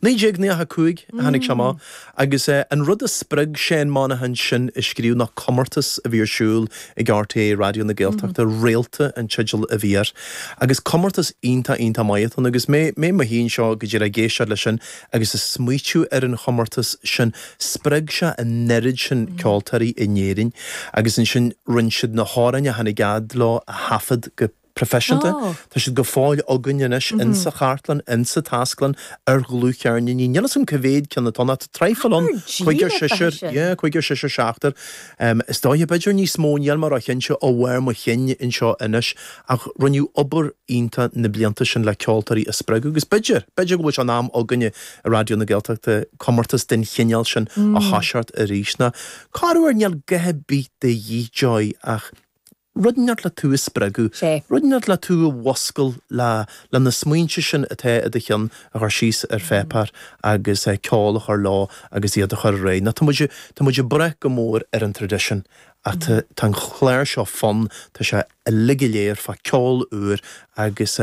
1995 a tháinig sé amach agus an rud a spreag Seán Monaghan sin a scríobh ná comórtas a bhí ar siúl ag RTÉ Raidió na Gaeltachta, Réalta an teideal a bhí air agus comórtas iontach, iontach maith a bhí ann agus mé i mo shuí anseo go díreach ag éisteacht leis sin agus ag smaoitiú ar an chomórtas sin. Spreag sé an oiread sin ceoltóirí in Éirinn agus ansin rinne siad na hamhráin a tháinig fhad leo a thaifead go. proifisiúnta. Tá siad go fóill againn anois in sa chartlann, in sa taisclann, ar dhlúthcheirníní. Níl fhios a'm cé mhéad ceann atá ann, ach tá traidhfil ann, Ceathrar cúigear díreach beidh seisear, sin. yeah, cúigear seisear seachtar em is dóiche, b'fhéidir níos mó, níl mé ró chinnte ó bharr mo chinn anseo anois ach rinneadh obair iontach na blianta sin le ceoltóirí a spreagadh agus b'fhéidir, b'fhéidir go bhfuil sé in am againne i Raidió na Gaeltachta comórtas den chineál sin a thoiseacht arís ná cárbh fhearr, níl a dhath ar bith de dhíth Joy ach. Rud inteacht le tú a spreagadh. Sea. Rud inteacht le tú a mhúscailt le le na smaointe sin atá i do cheann a chur síos ar phéipéar agus ceol a chur leo agus iad a chur ar aghaidh. Ná tá muid tá muid ag brath go mór ar an traidisiún ach tá tá an clár seo fonn, tá sé uilig go léir fá ceol úr agus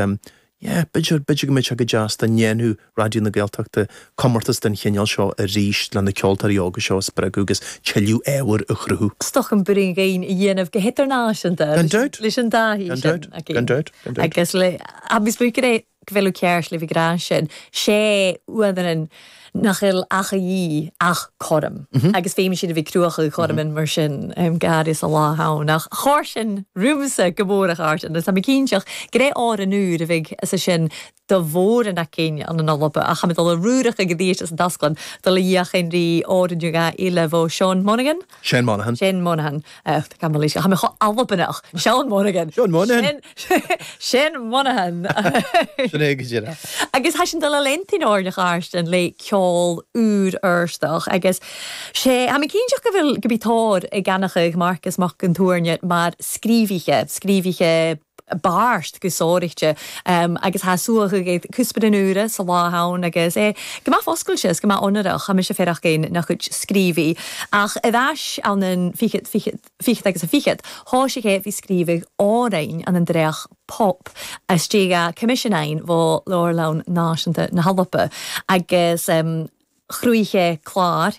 Yeah, b'fhéidir, b'fhéidir go mbeadh sé go deas dá ndéanfadh Raidió na Gaeltachta comórtas den chineál seo arís le na ceoltóirí óga seo a spreagadh agus tuilleadh ábhair a chruthú. stoc an Bhraoin Dhighin a dhéanamh go hidirnáisiúnta Gan dabht! leis an dtaithí Gan sin dabht! againn. Gan dabht! Gan dabht! Agus le, agus bhfuil, go bhfuil ceart libh, go bhfuil an ceart libh, an greann sin, sé uaim an. nach fhill ach a dhíth, ach cothrom. Agus faighim siad a bheith cruacha cothrom in mar sin, gar is a lá thonn. Ach chóir sin romhamsa go mór a chairt, agus táim cinnteach gur é ár an uair a bheidh as sin do mhór an aicín an ina lobadh. Ach tá mé ag dul a ruarach ag an dtí isteach sa dtásclann, dul i dhiaidh Henry Ord, New Guy, Aoife, Bhó Seoin, Monaghan. Shane Monaghan. Shane Monaghan. Tá mé chomh Albaineach. Seán Monaghan. Seán Monaghan. Shane Monaghan. Sin é go deireadh acu. Agus thaitin dul i Lent in Áirne Gharstin le ceol úr Fheirsteach agus sé, tá mé cinnteach go bhfuil, go mbí tóir ag Eanach Mharcas Mac an Tuairne mar scríobhaithe, scríobhaithe, beart go sároichte agus tá suaitheadh ag cuspóir an úire sa lá ann agus é go maith foscailte is go maith ionarach. Tá mise féar ach againn nach cuid scríobhaí. Ach i bhfeis an an fichead, fichead, fichead agus an fichead, thoisigh é faoi scríobhaigh Árainn an an dréacht pop istigh a' Coimisiún Aidhin bhó Leabharlann Náisiúnta na hEorpa agus chroith sé clár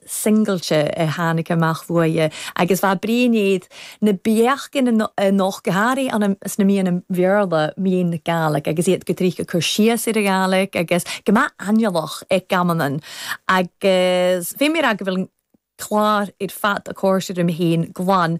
singilte a tháinig amach uaidh, agus bheadh Brian iad na beachain a nocht go hairí sna míonna Bhéarla, míon na Gàidhlig, agus iad go dtríocha cur síos ar an Ghàidhlig, agus go mba aineolach é Gamanan. Agus bhí mé ag rá go bhfuil an clár ar fad, a comhairseoir, uime féin, glan.